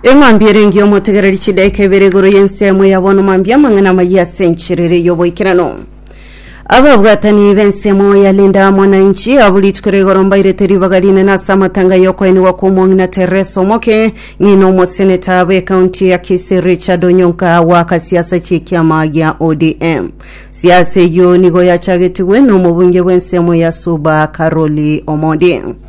Eng'ambi ere ngiomotegereri chidaeka ibere igoro y'ensemo ya bono mambia amang'ana amayia ase encherere y'oboikeranu. Ababwatani b'ensemo ya Linda Mwananchi abu rituko rigoro mbairete ribaga rinene ase amatanga y'okoenigwa kw'omong'ina Teresa Omoke, ng'ina omoseneta bw'ekaunti ya Kisii Richard Onyonka goaka siasa chi'ekiama gia ODM. Siasa eyio nigo yachagetigwe n'omobunge bw'ensemo ya Suba Caroli Omodi.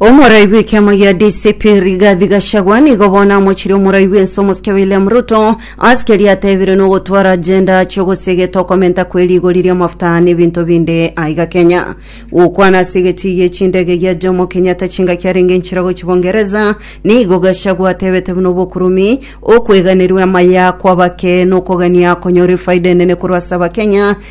Omoraibi w'ekiama gia DCP Rigathi Gachagua nigo bono amochire omoraibi w'ense omosike William Ruto ase keria atebire nogotwara agenda achia ogosea egete okomenta kwe rigori ri'amafuta n'ebinto binde aiga Kenya. Gokwana ase egetii gie chindege gia Jomo Kenyatta chingaki arenge enchera gochia Bungereza nigo Gachagua atebete buna obokurumi, okweganerwa amaya kw'abake nokogania konyora efaida enene korwa ase Abakenya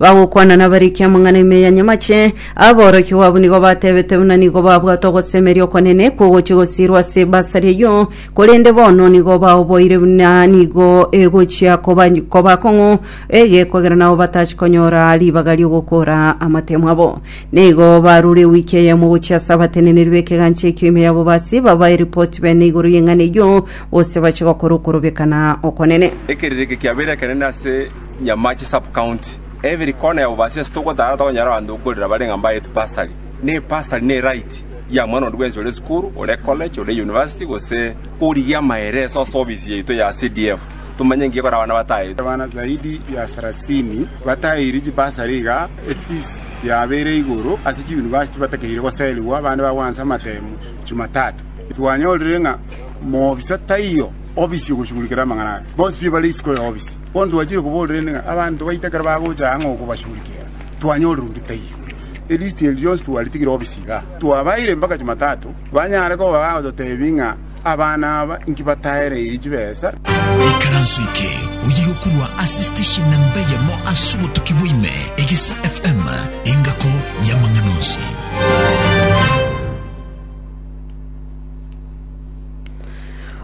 bagokwana nabariki amang'ana ime ya nyamache, aborokigwa abwo nigo batebete buna nigo babwate ogosemeria okonene kogochia gosiirwa ase ebasari eyio, korende bono nigo baoboire buna nigo egochia koba koba kong'u egekogera nabo batachi konyora ribaga ri'ogokora amatemo abo. Nigo barure ewiki eyemo gochia ase abateneneri b'ekegancha ekio ime ya bobasi babae ripoti bene igoro y'eng'ana eyio, gose bachie gokora okorobekana okonene. Ekerireke kiabeire ekenene ase. Nyamache Sub-county, Every corner ya Bubaasi ase togotara tokonyora abanto bokorera bare ng'a mbaetwe bursary. Ne bursary ne right ya mwana onde bwensi ore sukuru, ore college, ore university gose origia amaere ase ase ofisi yaito ya CDF. Tomanye ngiya ekore abana bataetwe. Abana zaidi ya sarasini bataeirwe chibursary iga efees yabeire igoro ase chiuniversity batakeire goserigwa abande bagwansa amatemu Jumatatu. Twanyorire ng'a moofisa taiyo ofisi ogochugurikera amang'ana aya. Bonsi piyo bare isiko ya ofisi. Bono twachire koborera inde ng'a abanto baito ekero bagocha aa ng'a okobachurikera, twanyorire onde taiyo. Elisti eria rionsi twaritigire obisa igaa. Twabaeire mpaka Jumatatu, banyare koba bagototebia ng'a abana aba inki bataereirie chibesa. Ikaranso eke oye gokurwa ase station namba eyemo ase obotuki bwa ime, Egesa FM, engako y'amang'ana onsi.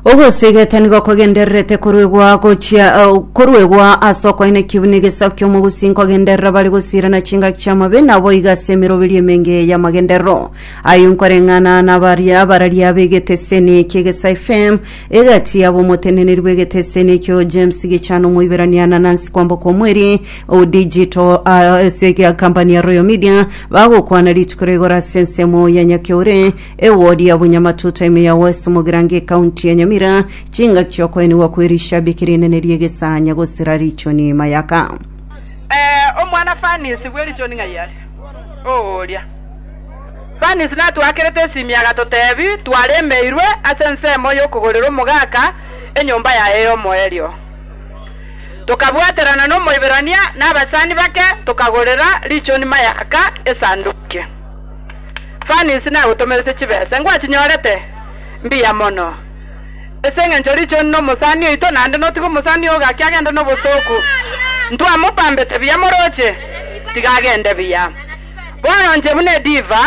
Ogosigeta nigo kogendererete koruegwa gochia eh, koruegwa ase okoina ekibi na egesaku ki'omogusi nkogenderera bare gosirana chingaki chi'amabe naboigo ase emeroberio emenge y'amagenderero ayio nkoreng'ana nabaria abararia b'egeteseni ki'egesae FM egati yabo omoteneneri bw'egeteseni ekio James Gichana omoiberania na Nancy Kwamboka omweri o digital ah, ase egia kampani ya Royal Media bagokwana rituko rigoro ase ensemo ya Nyakeure Ewodi ya Bunyamatuta ime ya West Mugirango Ekaunti ya Nyamira, chingaki chiokoenigwa kwe rishabiki rinene rie Gesanya gosira Richoni Mayaka. Ee, omwana Fanisi bwe richoni ng'ai are? Oo oria. Fanisi natwakerete esimi agatotebi twaremeirwe ase ensemo y'okogorera omogaka enyomba yaye y'omoerio. Tokabwaterana n'Omoiberania na abasani bake tokagorera Richoni Mayaka esanduki. Fani inse nagotomerete chibesa, ngwatinyorete? Mbuya mono. Ase engencho richoni nomosani oito, naende notige omosani oo gaki agende nobosooku. Ntwamopambete buya moroche, tiga agende buya. Bono inche buna ediva,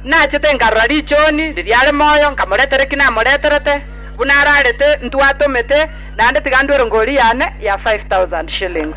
nachete nkarora richoni riria are moyo, nkamoretera eki namoreterete, buna ararete ntwatomete, naende tiga ndwere ngori yane ya five thousand shillings.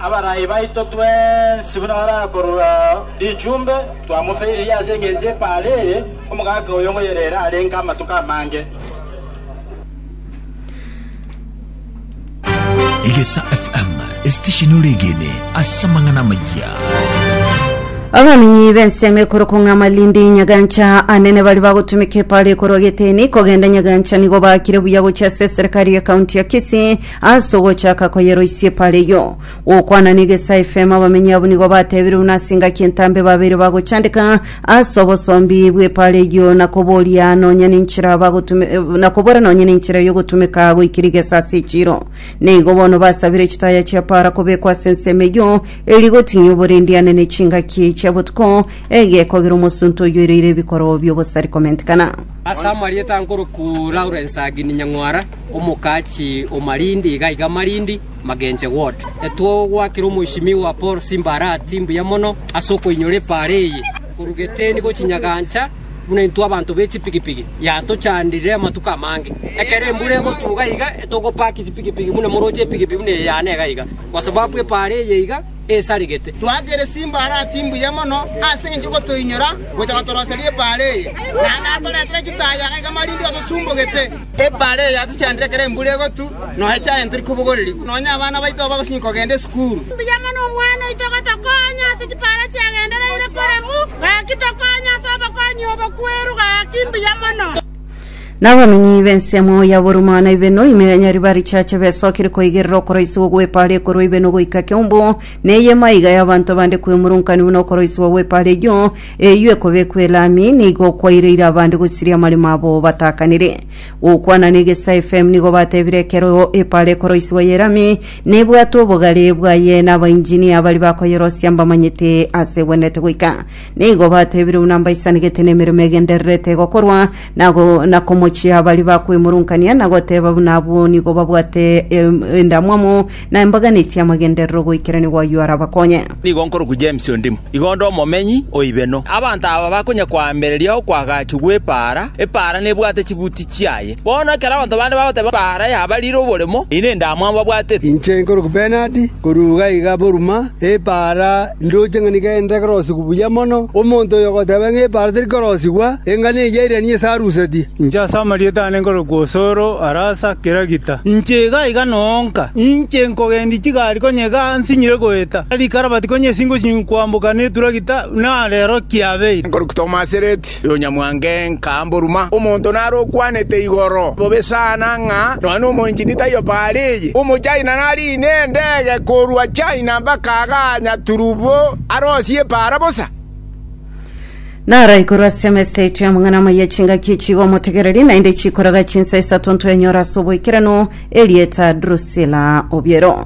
Abarai baito twensi buna barakorora richumbe, twamofeiririe ase engencho epaara eye, omogaka oyo ngoyerere arenge amatuko amange. Egesa FM, esitesheni ore egene ase amang'ana amayia. abanenyi b'ensemo ekoro kong'a malindi nyagancha anene bari bagotumeka epara ekorwa geteni kogenda nyagancha nigo bakire buya gochia ase eserekari ya kaunti ya kisii Ase ogochaka koyeroisia epaara eyio, gokwana n'egesa efemo, abamenyi abwo nigo batebire buna ase engaki entambe babeire bagochandeka ase obosombi bw'epaara eyio na koboria nonya nenchera bagotume na kobora nonya nenchera y'ogotumeka goika rigesa ase echiiro. Neigo bono basabire chitaya chi'epaara kobekwa ase ensemo eyio eria igotinya oborendiane ne chingaki chia botuko egekogera omosunte oyio ereire ebikorwa bi'obosari komentekana. Ase amarieta nkorokwo Lawrence Agini Nyang'wara. Omokachi o Malindi iga iga Malindi Magenche ward. Etwo gwakire omoishimiwa Paul Simba Arati mbuya mono ase okoinyora epaara eye korwa Geteni gochia Nyagancha buna intwe abanto be chipigipigi yatochandirire amatuko amange. Ekero embura egotuga iga togopaki chipigipigi buna moroche epigipigi buna eye yane iga iga kwa sababu epaara eye iga esaregete. Twakire Simba Arati mbuya mono ase eng'encho gotoinyora gocha gotoroseria epaara eye. Naende atoretire chitayo iga iga Malindi otosumbogete. Ebaale eye yatochandire ekero embura egotwa, nonya echaye ntori kobogorerigwa, nonya abana baito abagosinywa kogenda esukuru. Mbuya mono omwana oito gotokonya ase chipaara chiagendereire koremwa, gaki tokonya ase obokonyia obokweru, gaki mbuya mono. Nabamenyi b'ensemo ya Buruma na Ibeno ime ya Nyariba richache besokire koigerera okoroisigwa gw'epaara ekorwa Ibeno goika Kiombo, na eye maiga y'abanto bande kwemurunkanigwa nokoroisigwa gw'epaara eyio, Eyio ekobekwa elami nigo okwaireire abande gosiria amaremo abo batakanire. Gokwana n'Egesae FM nigo batebire ekero epaara ekoroisigwa y'elami nebwate obogare bwaye n'abainjinia baria bakoyerosia mbamanyete ase egwenerete goika. Nigo batebire buna mbaisanigete nemeremo egendererete gokorwa na go na komochia baria bakwemurunkania na goteba buna abwo nigo babwate endamwamu na embaganeti y'amagenderero goikerania gwaye arabakonye. Nigo nkorokwa James Ondimo, iga onde omomenyi o Ibeno. Abanto aba bakonya koambereria okoagachwa gw'epaara, epaara nebwate chibuti chiaye. Bono ekero abanto bande bagoteba epaara yabarire oboremo, eyio nendamwamu babwatete. Inche nkorokwa Bernard, korwa iga iga Burma, epaara Ndoche ng'a nigo ende ekerosigwa buya mono, omonto oyo ogoteba ng'a epaara teri korosigwa, engano eyio yairanie ase aruseti. Inche ase amarieta aane nkorokwa Osoro, arasa Kiragita. Inche iga iga noonka, inche nkogendia chigari konya iga nsinyire goeta, rikarabati konya esingo chinyingu koamboka neturagita, na rero kiabeire. Nkorokwa Tomasireti. Yonyamwange nkamboruma, omonto nare okwanete igoro bobe sana ng'a nonya nomoinchini taiyo paara eye. Omochina nariine endege korwa China mpaka aganya turubo arosie epaara bosa. Naraikorwa ase emesa yaito y'amang'ana amaya chingaki echiga omotegereri, naende chikoraga chinsa isato ntwenyora ase oboikeranu, erieta Drusilla Obiero.